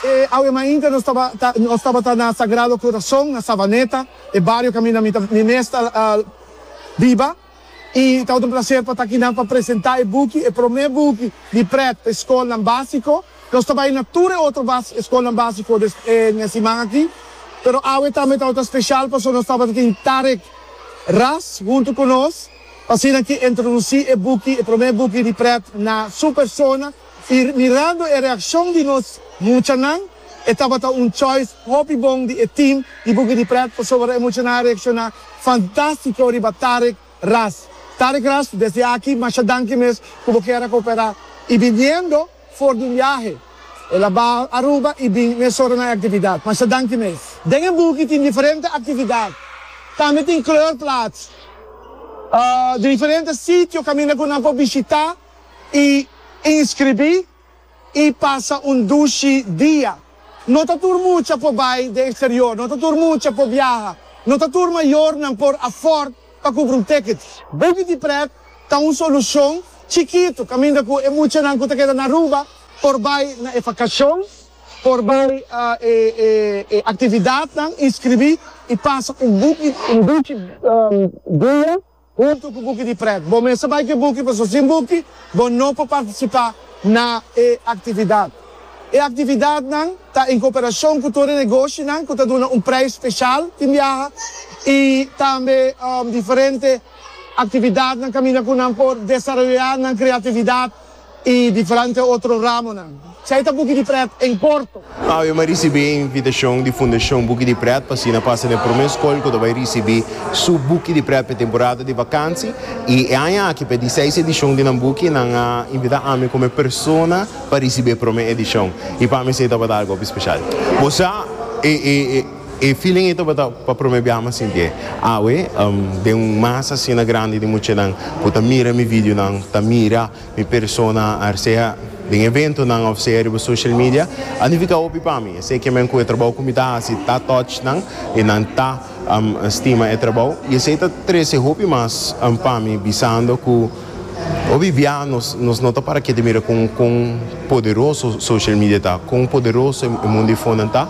E awe mainta nos nos tabata na Sagrado Corazon na Savaneta, e bario kaminda mi mi mes ta biba, i tabata un plaser pa ta aki nan pa presenta e buki, e prome buki di prèt pa e skolnan básiko. Nos ta bai na tur e otro bas eskolnan básiko des e ña siman aki, pero awe tambe tawata ta speshal paso nos tabata tin Tarek Ras huntu ku nos pa asina ki introdusí e buki, e promé buki di prèt na su persona i mirando e reakshon di nos muchanan e tabata un choice hopi bon di e tim di buki di prèt pasobra e muchanan a reakshoná fantástiko riba Tarek Ras. Tarek Ras desde aki masha danki mes ku bo kier a kooperá i biniendo. For di un biahe, el a baha Aruba i bin mes ora na e aktividat. Masha danki mes. Den e buki tin diferente aktividat. Tambe tin kleurplaats di diferente sitio kaminda ku nan por bishitá i inskribí i pasa un dushi dia. No ta tur mucha por bai den eksterior, no ta tur mucha por biaha, no ta tur mayornan por afòrd Pa kubri un teket. Baby di prèt ta un solushon chikitu kaminda ku e muchanan ku ta keda na Aruba por bai na e vakashon, por bai e aktividatnan, inskribí i pasa un buki, un dichi dia huntu ku buki di prèt. Bo mester bai ku e buki pasobra sin buki bo no por partisipá na e aktividat. E actividadnan ta en cooperacion cu tur e negoshinan cu ta duna un prijs special tin biaha y tambe diferente actividadnan caminda cu nan por desaroya nan creatividad y diferente otro ramonan. Esey ta Buki di Pret en corto. Ave Maria ricibi e invitacion di Fundacion Buki di Pret pa asina pasa na e prome scol cu ta bay ricibi su Buki di Pret pa e temporada di vakantie y e aña aki pa e diseis edicion di nan Buki nan a invita ami como e persona pa ricibi e prome edicion y pa mi esey tabata algo hopi special. Bo sa e e e feeling ey tabata pa prome biaha mi a sinti ey. Awe den un masa asina grandi di muchanan cu ta mira mi videonan, ta mira mi persona sea den eventonan of sea riba social media a nifica hopi pa mi. Esey kimen cu e trabou cu mi ta haci ta touch nan y nan ta stima e trabou y esey ta trece hopi mas pa mi bisando cu Bolivianos nos no ta para kiet di mira con con poderoso social media ta, con poderoso e mundo di fonan ta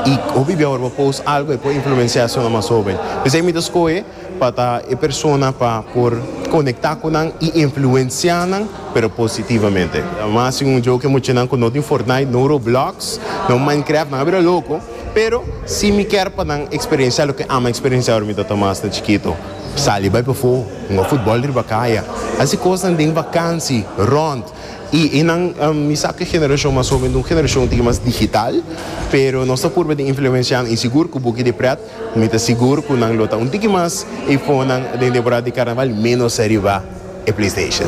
y hopi bia ora bo post algo e por influencia esnan mas hoben. P'esei mi ta scoge pa ta e persona pa por conecta cu nan y influencia nan pero positivamente. Mas si un joke muchanan cu no tin Fortnite, no Roblox, no Minecraft nan a bira loco pero si mi kier pa nan experiencia loke ama experiencia ora mi ta ta mas ta chikito. Sali bai pafó, hunga futbòl riba kaya, hasi kosnan den vakansi, rònt i e nan. Mi sa ku e generashon mas hoben ta un generashon tin mas digital, pero nos ta purba di influenshanan i sigur ku buki di prèt mi ta sigur ku nan lo ta un tiki mas i fonan den temporada di karnaval ménos ariba e playstation.